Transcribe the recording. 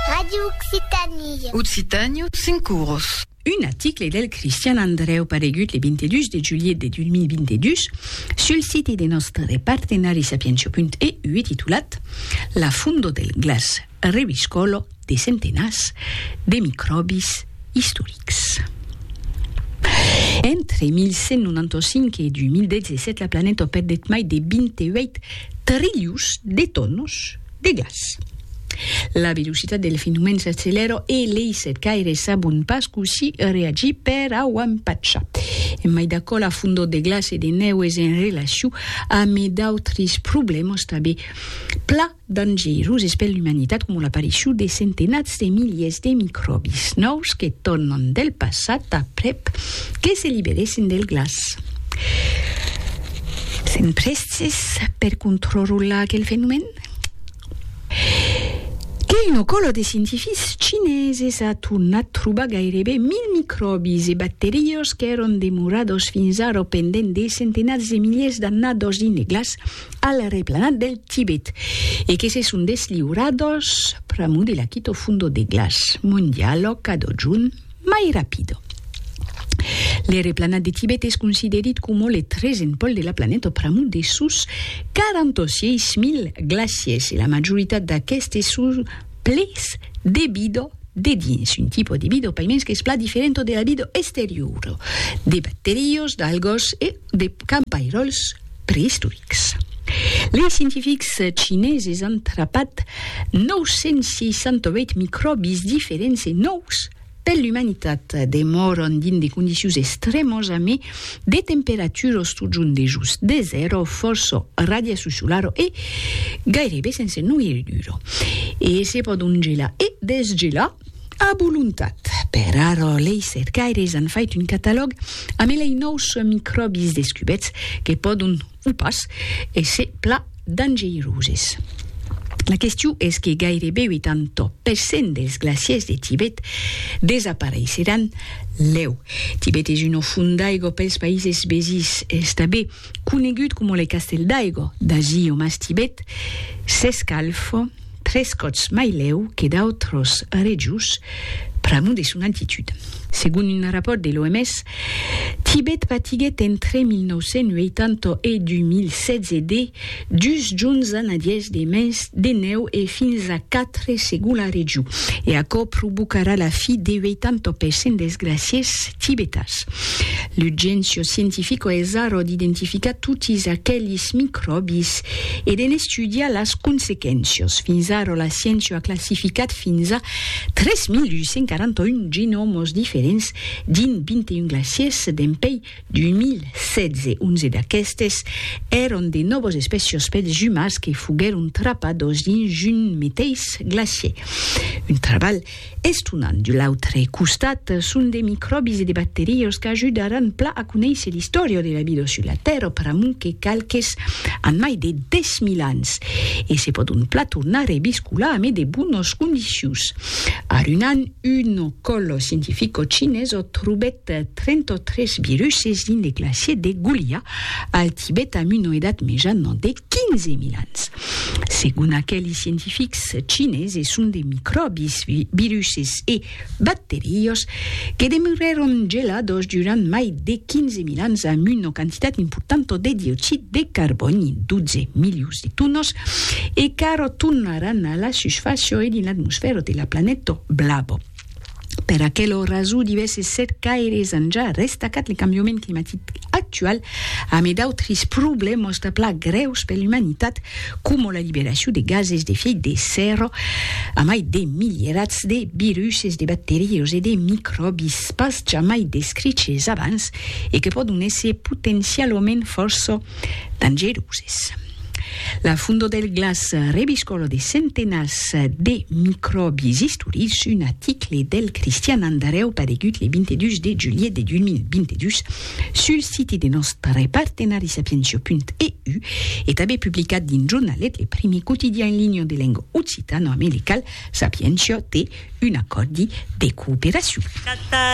Radio Occitània. Occitània, cinc oros. Un article del Cristian Andrèu paregut le 22 de julhet de 2022 sul siti de nòstre partenari Sapientia.eu e titulat La fondo del glaç reviscòlo de centenats de micròbis istorics. Entre 1195 e 2017 la planeta opèt deth mai de 28 Trilhos de tònos de gas. La velocitat del fenomèn s'accelèra e lei setcaires sabon pas cossí reagir per au empachar. E mai d'aquò, la fondor de glaç e de nèu es en relacion amé d'autres problèmas tabé pla dangeroses per l'umanitat coma l'aparicion de centenats de miliers de micròbis nòus que tornan del passat aprèp que se liberèssen del glaç. Sèn prèstes per controrollar aquel fenomèn? Que una còla de scientifics chineses a tornat trobar gairebe 1000 micròbis e bacterias qu'èron demorados fins ara pendent de centenats de miliers d'annadas ineglas al replanat del Tibet e que se son desliurados pr'amor de la quita funda de glaç mondiala cada jorn. mai rapido. L'ère planat de Tibet es considerit coma le tresen pòl de la planeta pr'amor de sos 46.000 glaciers e la majoritat d'aquestes son plets de vida de dins, un tipo de vida paimens qu'es plan diferenta de la vida exteriora, de bacterios, d'algas e de campairòls. preistorics. Lei scientifics chineses an trapat 968 micròbis diferents e nòus per l'umanitat. Demòran dins de condicions estrèmas a mai de temperatura o stojant dejós de zèro, fòrça radiacion solara e gairebe sense noirridura. E se pòdon gelar e desgelar. A volontat. Per ara, lei cercaires an fait un catalòg amb elei nòus micròbis descubets que pòdon, o pas, èsser pla dangeiroses. La question es que gairebe 80 per cent dels glaciers de Tibet desapareisseràn lèu. Tibet es una font d'aigua pels païses vesins, estabé. conegut coma le castèl d'Aigo, d'ací o mas Tibet, s'escalf tres còps mai lèu que d'autros rejos pr'amont de son altitud. Segon un rapòrt de l'OMS, Tibet patiguèt entre 1980 e 2016 de dus junhs a nadièrs de mens de nèu e fins a quatre segon la regiu, e aquò provocarà la fi de 80 per cent dels glacièrs tibetans. L'urgéncia scientifica es ara d'identificar totis aquelis micròbis e de n'estudiar las consequéncias. Fins ara la sciéncia a classificat fins a 3.841 genòmas diferents dins 21 glacièrs dempuèi D'un mil sèt ce onze d'aquestes èron de nòvos espècios pels jumars que foguèron trapados dins un meteis glacier. Un trabalh estonant. De l'autre costat, son de micròbis e de bacterios qu'ajudaràn plan a conéisser l'istòria de la vida sus la Tèrra pr'amor que qualques an mai de 10.000 ans e se pòdon plan tornar reviscolar, mai de bonas condicions. Arunan Un còl scientifico chineso trobèt 33 viruses dins le glacier de Gulia, al Tibet amb una edat mejana de 15.000 ans. Segon aqueli scientifics chineses son de micròbis, viruses e bacteriós que demeurèron gelados durant mai de 15.000 ans amb una quantitat importanta de dioxid de carbòni, 12 milius. Tunos e qu'arò tornaràn a la susfàcia e dins l'atmosfèra de la planeta blava. Per aquela rasó, divèrses cercaires an ja restacat le cambiament climatic actual amé d'autres problèmas de pla grèus per l'umanitat, coma la liberacion de gases d'efèit de sèrra amai de milierats de viruses, de bacterias e de micròbis pas jamai descriches abans e que pòdon èsser potencialament fòrça dangeroses. La fondo del glaç rebiscòla de centenats de micròbis istorics, un aticle del Cristian Andarèu paregut le 22 de julhet de 2022 sul siti de nòstre partenari sapientia.eu e tanben publicat dins Jornalet, le primi quotidian en linha de lenga occitano-americal, Sapientia te un acòrdi de cooperacion.